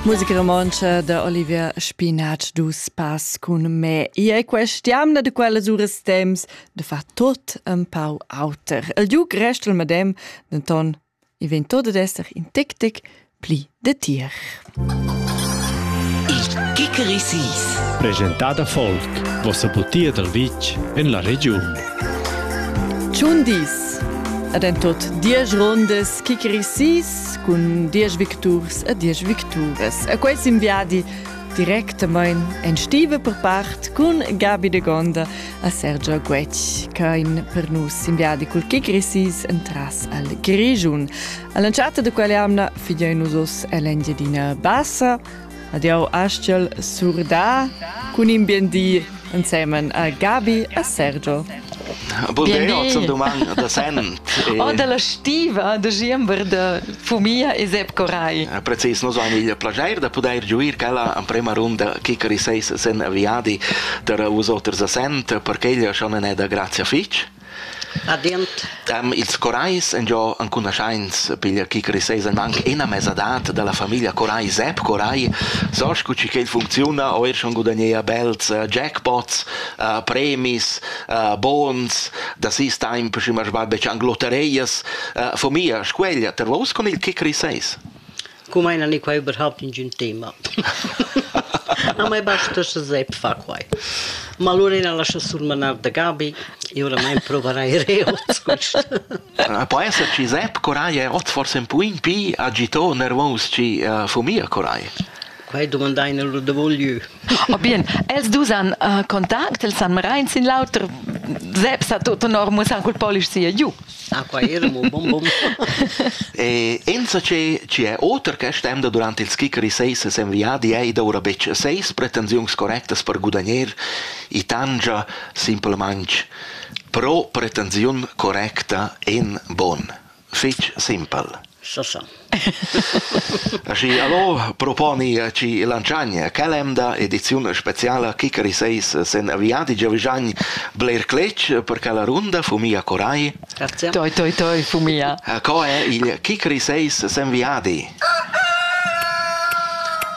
Musica romontscha da Olivia Spinat dus pass cun me. I è questiamna de quellas uras temps de far tot un pau auter. Il giuc resta il medem, denton i vegn tot ad esser in tic tic pli de tier. Il Kikerisis. Presentada folk, vossa butia dal vitg en la regiun. Ciun dis. Ad en tot diesch rundes Kikerisis cun diesch victurs e diesch victuras. A quest viadi directamain en stiva per part cun Gabi de Gonda a Sergio Guetg, che in per nus in viadi col Kigrisis entras al Grigiun. All'entschatta de quella amna fidia nus os ell'Engiadina Bassa, Ad jau astgel surdar cun in bien di ensemen a Gabi e Sergio. Buongiorno zum Domani da Sen. O dalla stiva da Giember da Fumia e Sepp Corai. Precis, nos han il plager da poder giuir quella prima runda Kikari 6 sen viadi da usoters a Sent, perché ella schon è da grazia fitch. Adieunt. Dam ils Corais ingiò ancunaschaints piglia chi creschess gnanc ena mesadad da la famiglia Corai Sepp Corai so scu chi quel funcziuna oir schon gudagnea bels uh, jackpots, uh, premis, uh, bons da sis taimp schi ma sbarbechan lotereias. Uh, fo mia, squeglia, ter vos con il chi creschess? Cu mai nan ni quai überhaupt ingün tema. A mai basta scha Sepp fa quai. Ma alura na lascha surmanar da Gabi, io oramaing provarai eir hoz quist. Po esser chi Sepp Coray è hoz forse ün puin pi agito nervos chi uh, fumia Coray? Quai dumandaina lur davo lieu. Oh bien, els dus han uh, contact, els han marain sin l'auter, Sepp sa tot honor mussar cul polish sia giu. Ah, quai era mo bom bom. E insatge che è oter che stenda durant ils kickeri seis sen viadi è id ora betg seis pretensiuns correctas per gudagner i tangia simpelmanc pro pretensiun correcta in bon. Fitch simpel. Scha scha. Aschi allora proponi a chi lancian quella emda ediziun speciala Kickeri 6 sen viadi giavigagn bler cletg per quella runda fumia corai. Grazie. Toi toi toi fumia. Co è il Kickeri 6 sen viadi?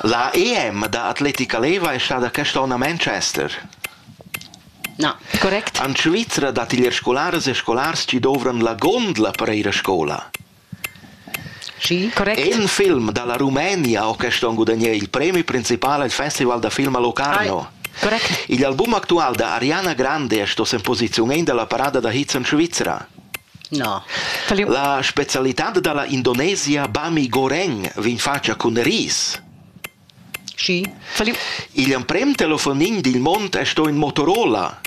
La EM da Atletica Leva è stata quest'anno a Manchester. No, correct. An Svizra dat igl scolaras e scolars ci dovran la gondla per ir a scola. In film dalla Rumenia ha quest onn gudagnà il premi principal al festival da film a Locarno. Igl album actual da Ariana Grande sto sen posiziun ein dalla parada da hits en Svizra. No. La specialitad dalla Indonesia Bami Goreng vegn fatga cun ris. Igl emprem telefonin dil mond è sto in Motorola.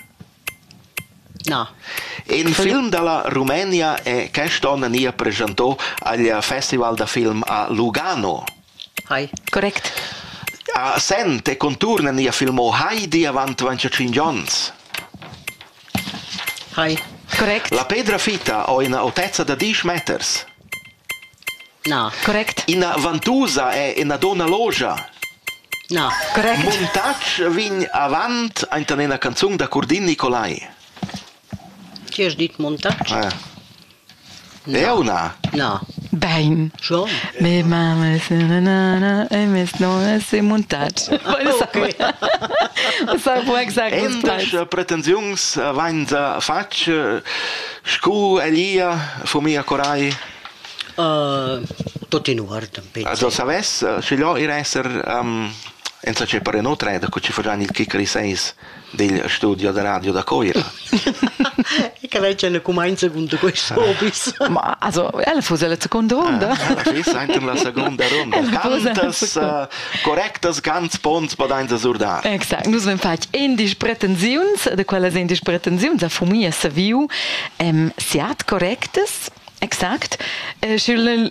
In film dalla Rumenia è quest onn vegnì preschentà al Festival da film a Lugano. Correct. A Sent e conturn vegnia filmà Heidi avant 25 onns. Correct. La Pedra fita ha ina autezza da 10 meters. Ina vantusa è ina dunna logia. Muntatsch vegn avant enta ina canzun da Curdin Nicolai. Ti has dit Muntatsch? Eu na. Na. Bain. Schon? Mes mamas e mes nonnas e Muntatsch. Sai bu exact. Endas pretensiuns vain fatg Scu è lia fu mia corai? Uh, tot in ord. Also savess, schiglio ir esser um, enzatgei per inoltrer da co ci fagian il kicker i seis dil studio da radio da Coira. e che lei ce ne comincia con questo hobbies. Ma also, elle fusse la seconda ronda. Ah, ci la seconda ronda. Cantas uh, correctas ganz pons podains surdar. Exact, nus vein fatg indisch pretensiuns, de quellas indisch pretensiuns a fumia saviu em siat correctas. Exakt. Äh,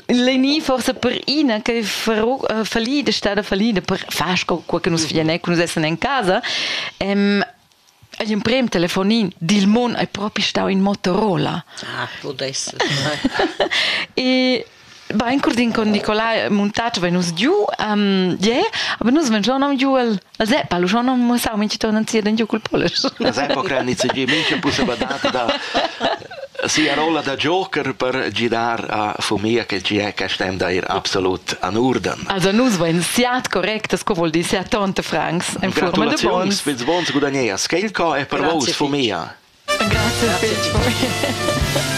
Leni forse per ina che äh, fallida, stada fallida per far qualche nus fianec, nus essen in casa. Ähm, Ei emprem telefonin dil mon ei propi stau in Motorola. Ah, podess. e bain curdin con Nicolai Muntac vein nus giu um, yeah, aber nus wenn schon am giu el Seppa, lu schon am musau minci tornan sia den giu cul Polish. La Seppa crea nizza gi mincha pusha badata da Sia rolla da joker per gidar a fumir che gie che stem da ir absolut an urden. Also nus vein siat correcte sco vol dir sia tante Franks en forma de bons. Bons bons gudagnea schelco e per vos fumia. Grazie Filippo.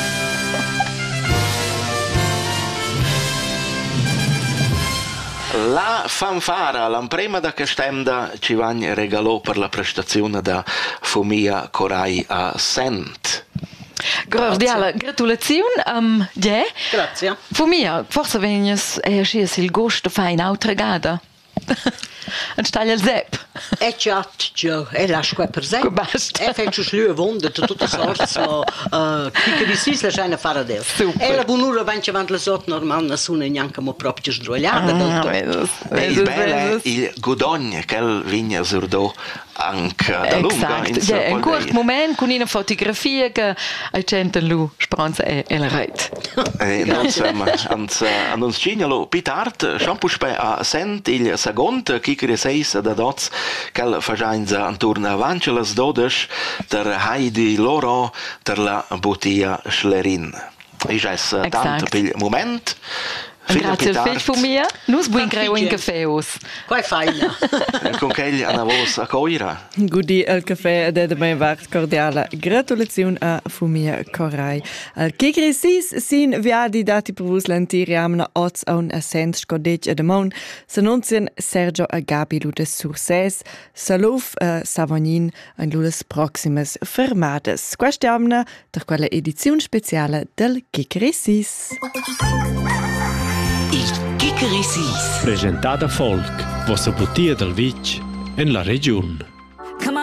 La fanfara, l'emprema da quest'emda ci van regalò per la prestazione da Fumia Corai a Sen. Cordiala gratulaziun am Dje. Grazie. Fu mia, forse vegnas eir schi sil gust da far in'autra gada. Ein stagl el Sepp. E chat giu, e la squa per se. Bast. E fetsch schlü wunde, tutte sorts, ma che vi sis la scheine far ad el. E la bunura venche avant la sot normanna suna gnanca mo proprio sdrugliada del tutto. Ah, es bella il godogn che el vigna surdò anche da lunga in in curt moment con ina fotografia che al center lu spranza e el reit eh, non sa ma ans annunz lo pitart schon puspei a sent il second chi cre seis da dots cal fajainza anturna avanti las dodesh ter Heidi Loro ter la butia Schlerin Ich esse tanto pigl mument. Grazie figl fu mia. Nus buin greu in caffè us. Quai faina. Con quegl anavos a Coira. Gudi al caffè ed è da mei vart cordiala gratulaziun a Fumia Corai. Al che gresis sin viadi dati per vus l'entiri amna oz a un assent sco dec e demon s'annunzien Sergio a Gabi Ludes Surses, Saluf a Savognin en ludas proximas fermadas. Questa amna per quella ediziun speciala del Kikerisis. Il Kikerisis. Presentada folk, vossa butia dal vitg en la regiun.